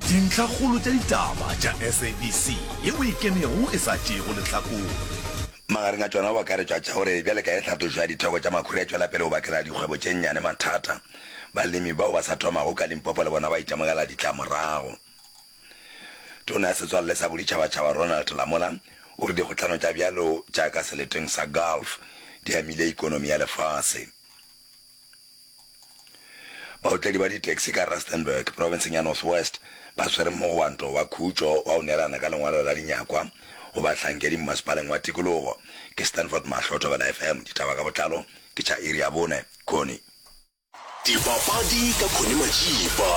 Dintlhakgolo tša ditaba tša SABC ye o e kenego e sa tšeego lehlakore. Magareng a tšona go akaretšwa tša gore bjale ka ge tlhatlošo ya ditheko tša makhura e tšwela pele go bakela dikgwebo tše nnyane mathata, balemi bao ba sa thomago ka Limpopo le bona ba itemogela ditlamorago. Tona ya Setswalle sa Boditšhabatšhaba Ronald Lamola o re dikgohlano tša bjalo tša ka seleteng sa Gulf di amile ekonomi ya lefase. Baotledi ba di-taxi ka Rustenburg, profenseng ya North West, ba swere mogwanto wa khutšo wa go neelana ka lengwalo la dinyakwa go bahlankedi mmasepaleng wa tikologo. Ke Stanford Mahlo, Thobela FM, ditaba ka botlalo ke tša iri ya bone. Connie. Dipapadi ka Connie Majiba,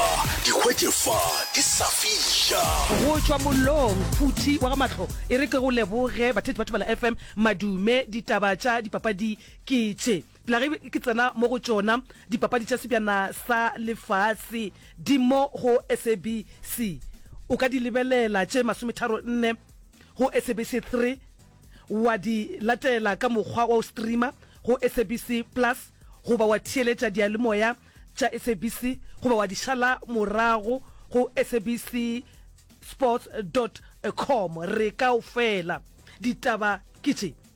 di hwetše fa di sa fiša. Go tšwa mollong, phuthi wa ga Mahlo e re ke go leboge batheetši ba Thobela FM. Madume, ditaba tša dipapadi ke tše. Pla ge ke tsena mo go tšona dipapadi tša sebjana sa lefase di mo go SABC. O ka di lebelela tše masometharo nne go SABC 3, wa di latela ka mokgwa wa go streamer go SABC Plus goba wa theeletša diyalemoya tša SABC goba wa di šala morago go SABC Sports dot com. Re kaofela. Ditaba ke tše.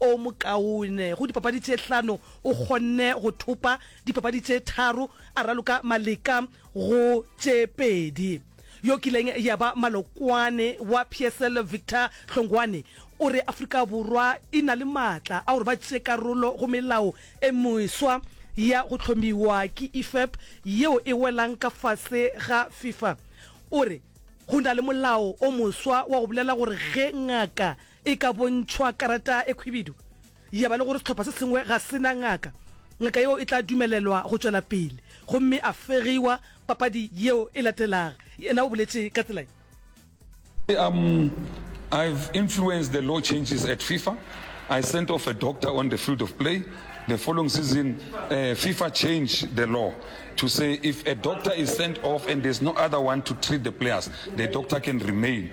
o mokaone go dipapadi tše hlano, o kgonne go thopa dipapadi tše tharo a raloka maleka go tše pedi. Yo kileng ya ba malokwane wa PSL Victor Hlongwane o re Afrika Borwa e na le maatla a gore ba tšee karolo go melao e meswa ya go hlomiwa ke IFAB yeo e welang ka fase ga FIFA. O re go na le molao o moswa wa go bolela gore ge ngaka E ka bontšhwa karata e khwibidu, ya ba le gore sehlopha se sengwe ga se na ngaka, ngaka yeo e tla dumelelwa go tšwela pele gomme a fegiwa papadi yeo e latelaga, yena o boletše ka tsela ye. I am, I have influenced the law changes at FIFA, I sent off a doctor on the field of play, the following season FIFA changed the law to say if a doctor is sent off and there's no other one to treat the players, the doctor can remain.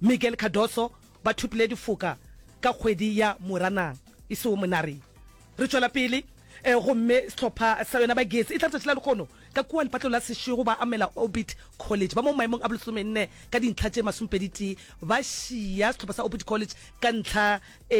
Miguel Cardoso ba thopile difoka ka kgwedi ya Moranang e sego monareng. Re tšwela pele gomme sehlopha sa yona ba Gesi e tla letšatši la lekgono ka kua lepatlelo la sešego ba amela Orbit College ba mo maemong a bolesomenne ka dintlha tše masomepedi tee ba šiya sehlopha sa Orbit College ka ntlha